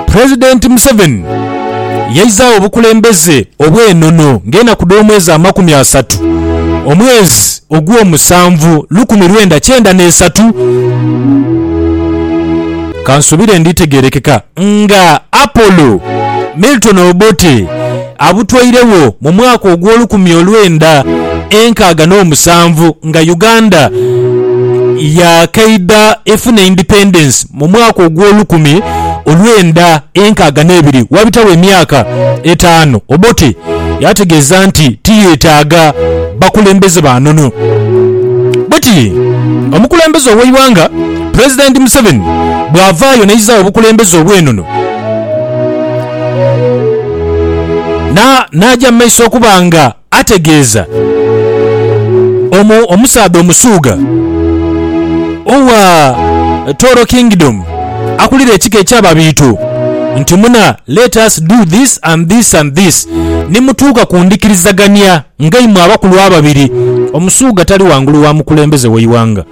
Pulezidenti Museveni yaizaagho obukulembeze obw'enono ng'enaku dh'omwezi amakumi asatu omwezi ogw'omusanvu lukumi lwenda kyenda n'esatu. Kansuubire nditegeerekeka nga Apollo Milton Obote. Abutweiregho mu mwaka ogw'olukumi olwenda enkaaga n'omusanvu nga Uganda yaakaidha efuna independence mu mwaka ogw'olukumi olwenda enkaaga n'ebiri. Waabitagho emyaka etaanu Obote yaategeeza nti tiyeetaaga bakulembeze ba nono. Bweti omukulembeze ow'eighanga Pulezidenti Museveni bw'avaayo n'aizaagho obukulembeze obw'enono. N'aja mu maiso okuba nga ategeeza omusaadha Omusuugha owa Toro Kingdom akulira ekika eky'Ababiito nti, Muna, let us do this and this and this. Ni mutuuka ku ndhikirizagania ng'eimwe abakulu ababiri. Omusuugha tali ghangulu wa mukulembeze w'eighanga.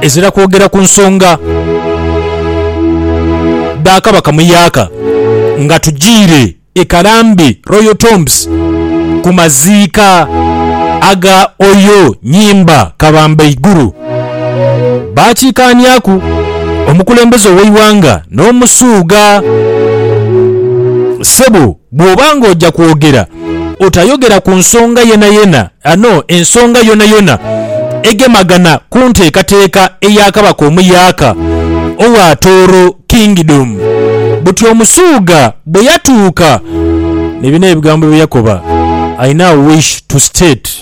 ezira kwogera ku nsonga dha Kabaka Muyaaka nga tujiire e Karambi Royal Tombs ku maziika aga Oyo Nyimba Kabambaiguru. Baakiikaaniaku omukulembeze ow'eighanga n'omusuugha. Ssebo. Bw'oba ng'oja kwogera, otayogera ku nsonga yenayena ano ensonga yonayona egemagana ku nteekateeka eya Kabaka omuyaaka owa Tooro Kingdom. Buti Omusuuga bwe yatuuka ni bino ebigambo bye yakoba, I now wish to state.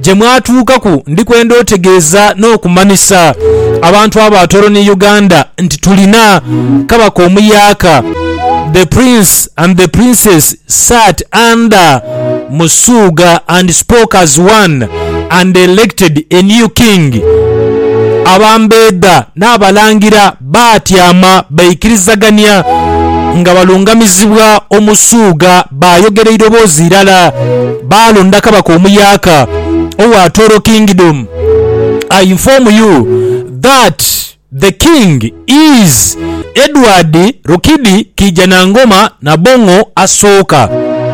gye mwatuukaku ndi kwenda otegeeza n'okumanhisa abantu abo ba Toro ni Uganda nti tulina Kabaka omuyaaka, The Prince and the Princess sat under Musuuga and spoke as one and elected a new King. Abambeedha n'Abalangira. Baatyama baikirizagania nga balungamizibwa Omusuugha. Baayogera eiroboozi irala. Baalonda kabaka omuyaaka owa Toro Kingdom. I inform you that the king is Edward Rukidi Kiijanangoma Nabong'o Asooka.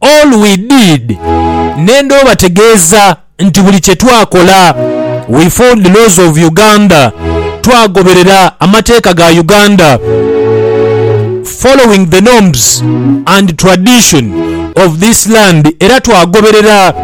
All we did nenda obategeeza nti buli kye twakola we followed the laws of Uganda, twagoberera amateeka ga Uganda, following the norms and tradition of this land era twagoberera.